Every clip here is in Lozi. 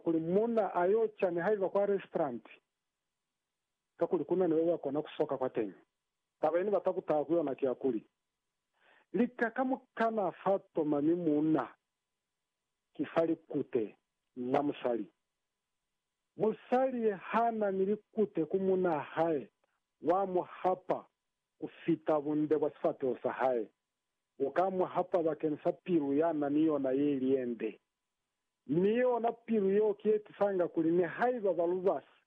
Kuli muuna a yo ca nihaiba kwa restauranti kakuli ku na ni baba kona ku soka kwateñi, taba ye ni bata ku taha ku yona ki ya kuli, Lika ka mu kana fa toma mi muuna ki fa likute la musali. Musali ha na ni likute ku muuna hae, wa mu hapa ku fita bunde bwa sifateho sa hae. u ka mu hapa bakeni sa pilu ya na ni yona ye i liende. Mi yona pilu yeo ki ye tisanga kuli nihaiba ba lubasi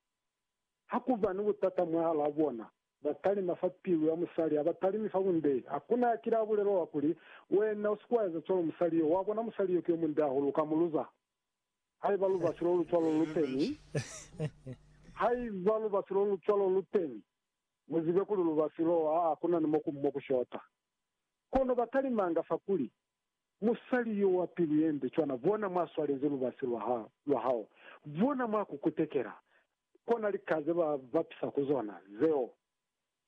ha ku ba ni butata mwahalaa bona, ba talima fa pilu ya musali ha ba talimi fa bunde. Hakuna ya kile a bulela wa kuli, Wena u si ke wa eza cwalo musali yo. Wa bona, musali yo ki yo munde hahulu, u ka mu luza. Haiba lubasi lo lu cwalo lu teni, haiba lubasi lo lu cwalo lu teni, Muzibe kuli lubasi loo haa kuna ni mokumu mo kushota. Kono batalimanga fakuli, Musali yo wa pilu yende cwana, bona mwa swalezi lubasi lwa ha, lwa hao, bona mwa ku kutekela, kona lika ze ba bapisa ku zona, zeo.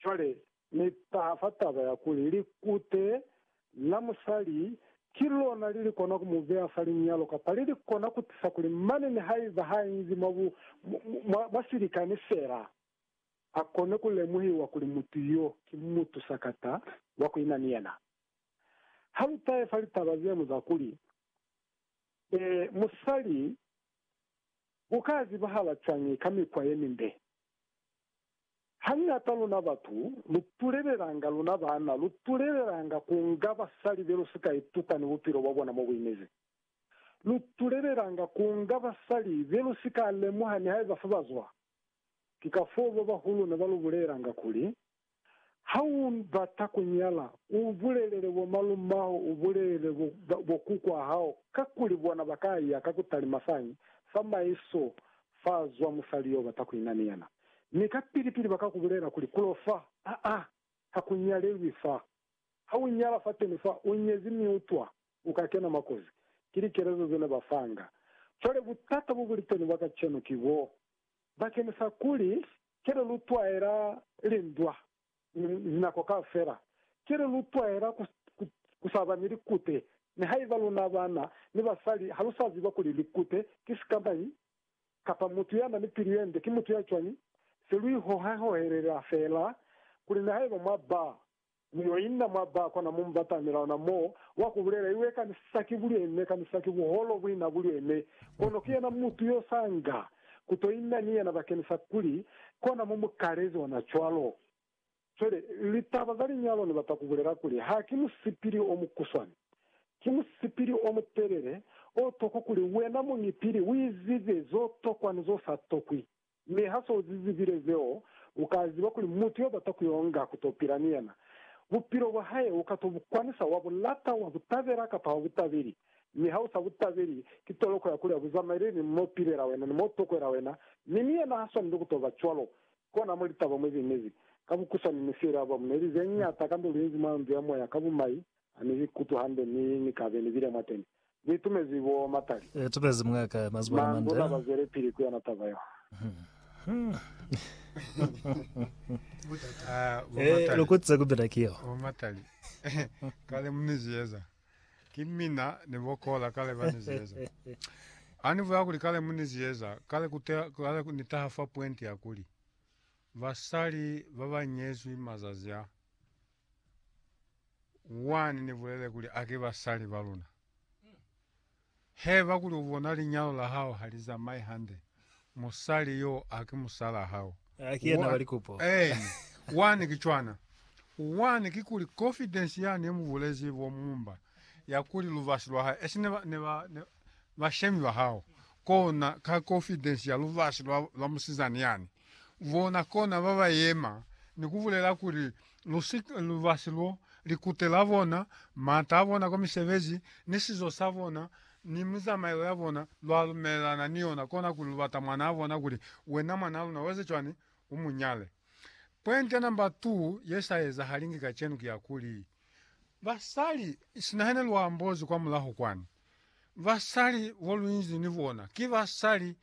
Cwale Ni taha fa taba ya kuli likute la musali ki lona li li kona ku mu beya fa linyalo, kapa li li kona ku tisa kuli mane nihaiba ha inzi mwa bu, mwa, mwa silikani fela. a kone ku lemuhiwa kuli mutu yo ki mutu sakata wa ku ina ni yena. Ha lu tahe fa litaba ze mu za kuli, Ee, musali u ka zibahala cwañi ka mikwa ye mimbe? Hañata luna batu lu tulelelanga, luna baana lu tulelelanga ku nga basali be lu si ka ituta ni bupilo bwa bona mo bu inezi. Lu tulelelanga ku nga basali be lu si ka lemuha nihaiba fa ba zwa. Ki kafoo babahulu ne ba lu bulelanga kuli, Ha u bata ku nyala, u bulelele bomalumaho, u bulelele bokukwaa hao, kakuli bona ba ka ya ka ku talima fañi fa maiso fa zwa musali yo u bata ku ina ni yena, mi kapili-pili ba ka ku bulela kuli, Kulo fa, aa, ha ku nyalelwi fa. Ha u nyala fateni fa, u nyezi mi u twa, Ku ka kena makozi, ki likelezo ze ne ba fanga. Cwale butata bo bu li teni bwa kacenu ki bo bakenisa kuli, Cwale lu twaela lindwa linako kaufela. Cwale lu twaela ku, ku, ku sa ba ni likute. Nihaiba luna bana ni basali ha lu sa ziba kuli likute ki sikamañi, kapa mutu ya na ni pilu ye nde ki mutu ya cwañi, se lu ihohahohelela fela kuli nihaiba mwa ba Mu yo inna mwa ba kona mu mu batamela ona mo, wa ku bulela, Iwe kanisa ki buleme, kanisa ki buholo buina buleme. Kono ki yena mutu yo sa nga ku to inna ni yena bakeni sa kuli, Kona mu mu kalezi ona cwalo. Cwale, litaba za linyalo ni bata ku bulela kuli, ha ki musipili o mukuswani. Ki musipili o mutelele, o tokwi kuli wena muñi pili u izibe zo tokwa ni zo sa tokwi. Mi ha se u zi zibile zeo, u ka ziba kuli mutu yo bata ku yo nga ku to pila ni yena, bupilo bwa hae u ka to bu kwanisa, wa bu lata, wa bu tabela kapa ha u bu tabeli. Mi ha u sa bu tabeli, ki toloko ya kuli ha bu zamaeleli ni m'o pilela wena, ni m'o tokwela wena, mi ni yena ha swaneli ku to ba cwalo. Ki kona mo litaba mwe ze inezi. Ka bukusani, ni siele Abramu neli ze ñata kamba lu inzi mwa ndu ya moya ka bumai, Ha ni ikutwi hande mi ni kabe ni bile mwateni. Ni itumezi bo matali. I itumezi mwaka mazwale mande. Manduna ba zwelepili ku yona taba yo. Ee, lu kutise ku bina ki yo. Bo matali. Kale mu ni ziyeza. Ki mina ni bo Kola kale ba ni ziyeza. Ha ni bulela kuli kale mu ni ziyeza, kale ku kale ni taha fa pwenti ya kuli, basali ba ba nyezwi mazazi a. Wani ni bulele kuli a ki basali ba luna. Heba kuli u bona linyalo la hao ha li zamai hande, musali yo a ki musalaa hao. A ki yena wa likupo. Eeni. Wani ki cwana. Wani ki kuli confidence yani ye mu bulezi bo mumba ya kuli lubasi lwa hae, esi ne ba, ne ba, ne, bashemi ba hao, kona ka confidence ya lubasi lwa, lwa musizani yani, bona kona ba ba yema ni ku bulela kuli, Lu si, lubasi lo, likute la bona, mata a bona kwa misebezi, ni sizo sa bona, ni mizamaelo ya bona, lwa lumelelana ni yona, kona kuli lu bata mwanaa bona, kuli, Wena mwanaa luna, u eze cwani? U mu nyale. Pwente number two ye sa ezahalingi kacenu ki ya kuli, basali, sinahene lwa ambozi kwamulaho kwani, Basali bo luinzi ni bona ki basali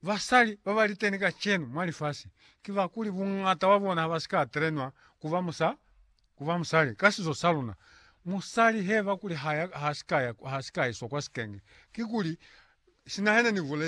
basali ba ba liteni kacenu mwa lifasi. Ki ba kuli buñata bwa bona ha ba si ka trenwa ku ba musa, ku ba musali. Ka sizo sa luna, musali h'e ba kuli ha ya, ha si ka ya, ha si ka iswa kwa sikenge, kikuli sina yena ni bulezi.